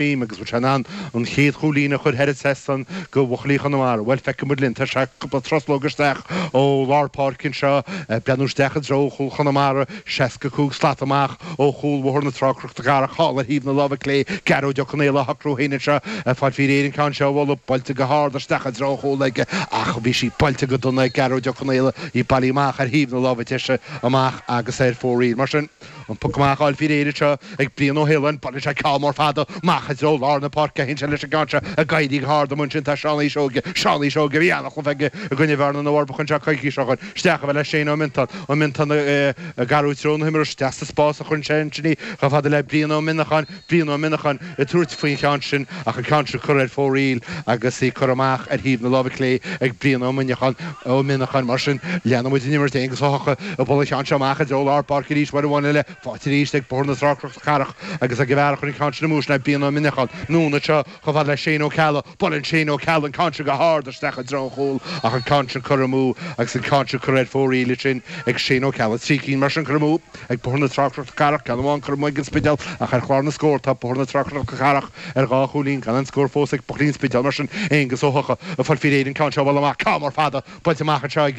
Beam agus bhfuil sé in ann an chéad chúilín a chur thar an trasnán go Bhuachaillí Chonamara. Bhuel feicfidh muid linn. Tá sé cúpla truslóg isteach ó lár páirce anseo ag breathnú isteach i dtreo chúl Chonamara, seasca cúig slat amach ó chúl Bhóthar na Trá-Cnoc na Cathrach thall ar thaobh na láimhe clé, Gearóid Ó Conaola á shocrú féin anseo ag fáil faoi réir an ceann seo a bhualadh buailte go hard isteach i dtreo chúil aige ach bhí sí buailte go dona ag Gearóid Ó Conaola í bailithe amach ar thaobh na láimhe deise amach agus ar fóraoil. Mar sin. An puc amach á fháil faoi réir anseo ag Brian Ó hAoláin, buaileann sé ceann mór fada amach i dtreo lár na páirce, théann sé leis an gceann seo ag éirí go hard amuigh ansin tá Seánaí Seoige, Seánaí Seoige a bhí an-chluiche aige i gcoinne Bhearna na bhForbacha anseo coicís ó shoin, isteach chomh fada le Shane Ó Miontáin, Ó Miontáin ag athrú treo na himeartha, isteach sa spás a chuireann sé ansin í, chomh fada le Brian Ó Mionacháin, Brian Ó Mionacháin ag tabhairt faoin cheann sin ach an ceann seo curtha ar fóraoil agus í curtha amach ar thaobh na láimhe clé ag Brian Ó Mionacháin, Ó Mionacháin. Mar sin, leanann muid an imirt, Aonghus Ó hEochaidh ag bualadh an cheann seo amach i dtreo lár páirce arís, uair amháin eile faighte arís ag Bóthar na Trá-Cnoc na Cathrach agus ag an bhfear a chuir an ceann sin amú sin ná Brian Ó Mionacháin. Anonn anseo chomh fada le Shane Ó Ceallaigh. Buaileann Shane Ó Ceallaigh an ceann sin go hard isteach i dtreo an chúil ach an ceann sin curtha amú agus an ceann sin curtha ar fóraoil ansin ag Shane Ó Ceallaigh. Trí cinn mar sin curtha amú. Ag Bóthar na Trá-Cnoc na Cathrach, ceann amháin curtha amú ag an Spidéal, ach ar chlár na scór tá Bóthar na Trá-Cnoc na Cathrach ar dhá chúilín, gan aon scór fós ag Buachaillí an Spidéil mar sin, Aonghus Ó hEochaidh ag fáil faoi réir an ceann seo a bhualadh amach, ceann mór fada buailte amach anseo i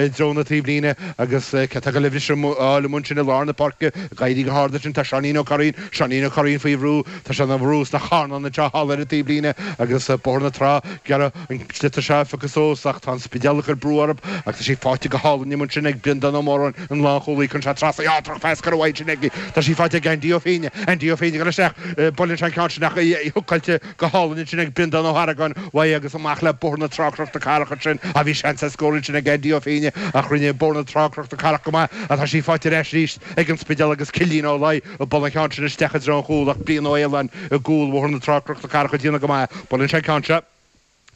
dtreo na taobhlíne agus cé atá ag goil í seo a fháil amuigh ansin i lár na páirce, ag éirí go hard ansin tá Seáinín Ó Curraoin, Seáinín Ó Curraoin faoi bhrú, tá sé ina bhrú sna carnáin anseo thall ar an taobhlíne agus Bóthar na Trá ag iarraidh. An sliotar seo a phiocadh suas, ach tá an Spidéal ag cur brú orthub, ach tá sí faighte go hálainn amuigh ansin ag Breandán Ó Móráin, an lánchúlaí, cuireann sé trasna í á, droch-phas curtha uaidh ansin aige. Tá sí faighte ag Aindí Ó Féinne, Aindí Ó Féinne ag goil isteach, buaileann sé an ceann sin ach í húcáilte go hálainn ansin ag Breandán Ó hArgáin uaidh agus amach le Bóthar na Trá-Cnoc na Cathrach ansin. Á bhí seans ar scór ansin ag Aindí Ó Féinne ach rinne Bóthar na Trá-Cnoc na Cathrach go maith. Á tá sí faighte ar ais aríst ag an Spidéal agus Cillín Ó Bualadh an ceann sin isteach i dtreo an chúil ach Brian Ó hAoláin i gcúl Bhóthar na Trá-Cnoc na Cathrach ag déanamh go maith. Buaileann sé an ceann seo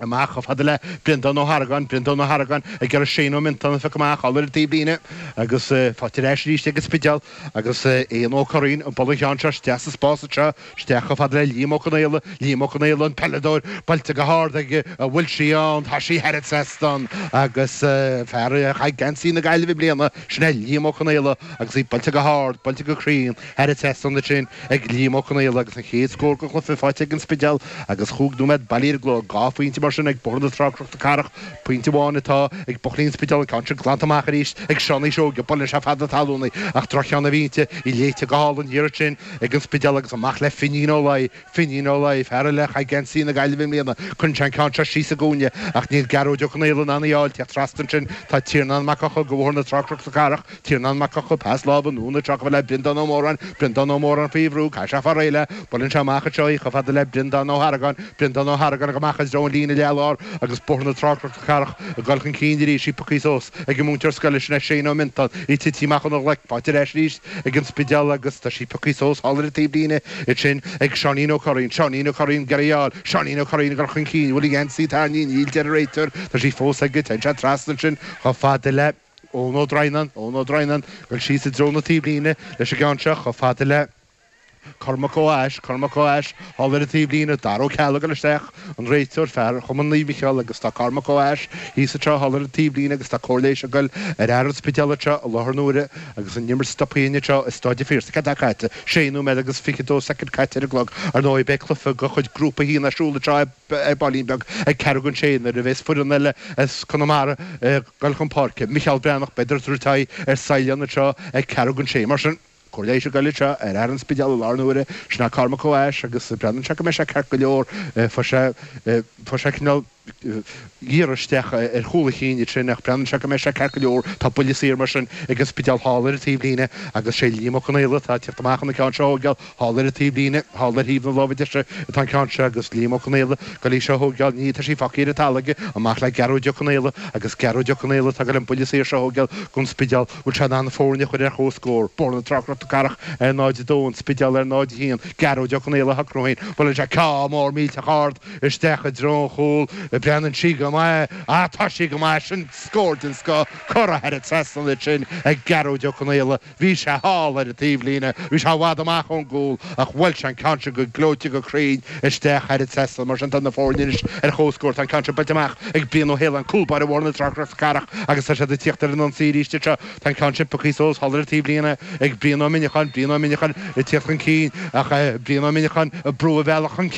amach chomh fada le Breandán Ó hArgáin. Breandán Ó hArgáin ag iarraidh Shane Ó Miontáin a phiocadh amach thall ar an taobhlíne agus faighte ar ais arís ag an Spidéal agus Eoghan Ó Curraoin ag bualadh an cheann seo isteach sa spás anseo isteach chomh fada le Liam Ó Conaola. Liam Ó Conaola an peileadóir buailte go hard aige an bhfuil sí ann tá sí thar an trasnán agus fear a chaith geansaí na Gaillimhe i mbliana, Sin é Liam Ó Conaola agus í buailte go hard, buailte go cruinn, thar an trasnán ansin, ag Liam Ó Conaola agus an chéad scór den chluiche faighte ag An Spidéal agus chúig nóiméad bailithe ar an gclog. Dhá phointe mar sin ag Bóthar na Trá-Cnoc na Cathrach, pointe amháin atá ag Buachaillí an Spidéil, an ceann sin glanta amach arís ag Seánaí Seoige, buaileann sé feadh na talúna í ach droch-cheann a bhí inti, í léite go hálainn thiar ansin ag An Spidéal agus amach le Finín Ó Laoi, Fínín Ó Laoi, fear eile a chaith geansaí na Gaillimhe i mbliana, cuireann sé an ceann seo síos sa gcúinne, ach níl Gearóid Ó Conaola in ann í a fháil, tíocht trasna ansin, tá Tiarnán Mac Eochaidh go Bóthar na Trá-Cnoc na Cathrach, Tiarnán Mac Eochaidh, pas láimhe, anonn trasna chomh fada le Breandán Ó Móráin, Breandán Ó Móráin faoi bhrú, caithfidh sé fáil réidh léi, buaileann sé amach anseo í chomh fada le Breandán Ó hArgáin, Breandán Ó hArgáin ag goil amach i dtreo an líne leath-lár agus Bóthar na Trá-Cnoc na, Cathrach, ag dul chun cinn arís, í pioctha suas ag an múinteoir scoile sin é Seán Ó Miontáin, í tite amach óna ghlaic, faighte ar ais arís ag an Spidéal agus tá sí pioctha suas thall ar an taobh líne, ansin ag Seáinín Ó Curraoin, Seáinín Ó Curraoin, ag iarraidh fáil, Seáinín Ó Curraoin, ag dul chun cinn, bhfuil a gheansaí tarraingthe, níl, deir an réiteoir, tá sí fós aige, téann sé trasna ansin chomh fada le Eoin Ó Droighneáin, Eoin Ó Droighneáin, ag dul síos i dtreo na taobhlíne leis an gceann seo, chomh fada le. Cormac Mac Thomáis, Cormac Mac Thomáis thall ar an taobh líne, Dara Ó Ceallaigh ag goil isteach, an réiteoir, fear Chumann Naomh Micheál agus tá Cormac Mac Thomáis thíos anseo thall ar an taobh líne agus tá cóir leighis ag goil ar fhear an Spidéil anseo i láthair na huaire agus an imirt stoptha anseo i Stáid an Phiarsaigh. Céard atá caite? Sé nóiméad agus fiche dó soicind caite ar an gclog. Ar ndóigh beidh cluiche go chuid grúpa a haon ar siúl anseo ar baillín beag ag ceathrú gon sé nuair a bhéas foireann eile as Conamara ag goil chun páirce, Micheál Breathnach, beidh ag tabhairt aghaidh ar Saighleán anseo ag ceathrú gon sé. Mar sin. Cóir leighis ag goil anseo ar fhear an Spidéil i láthair na huaire sin é Cormac Mac Thomáis agus breathnaíonn sé go mbeidh sé ceart go leor. Fuair sé, fuair sé cineál iarraidh isteach ar chúl a chinn ansin ach breathnaíonn sé go mbeidh sé ceart go leor. Tá buille saor mar sin ag an Spidéal thall ar an taobh líne agus sé Liam Ó Conaola atá ag teacht amach chun an ceann seo a thóigeáil. Thall ar an taobh líne, thall ar thaobh na láimhe deise atá an ceann seo agus Liam Ó Conaola goil í seo a thóigeáil. Níl, tá sí fágtha ar an talamh aige. Amach le Gearóid Ó Conaola agus Gearóid Ó Conaola tá goil an buille saor seo a thóigeáil gon Spidéal. Bhfuil sé in ann na foirne a chur ar chomhscór, Bóthar na Trá-Cnoc na Cathrach ar 0-2, an Spidéal ar 0-1, Gearóid Ó Conaola á shocrú féin, buaileann sé ceann mór millteach ard isteach i dtreo an chúil, breathnaíonn sí go maith, ah tá sí go maith, sin scór den scoth, curtha thar an trasnán ansin ag Gearóid Ó Conaola, bhí sé thall ar an taobhlíne, bhí sé i bhfad amach ón gcúl ach bhuail sé an ceann sin go gleoite go cruinn, isteach thar an trasnán. Mar sin tá na foirne anois ar chomhscór. Tá an ceann sin buailte amach ag Brian Ó hAoláin, cúlbáire Bhóthar na Trá-Cnoc na Cathrach agus tá siad ag tíocht ar an ionsaí arís anseo. Tá an ceann sin pioctha suas thall ar an taobh líne ag Brian Ó Muineacháin, Brian Ó Muineacháin ag tíocht chun cinn ach Brian Ó Muineacháin ag brú a bhealach chun cinn.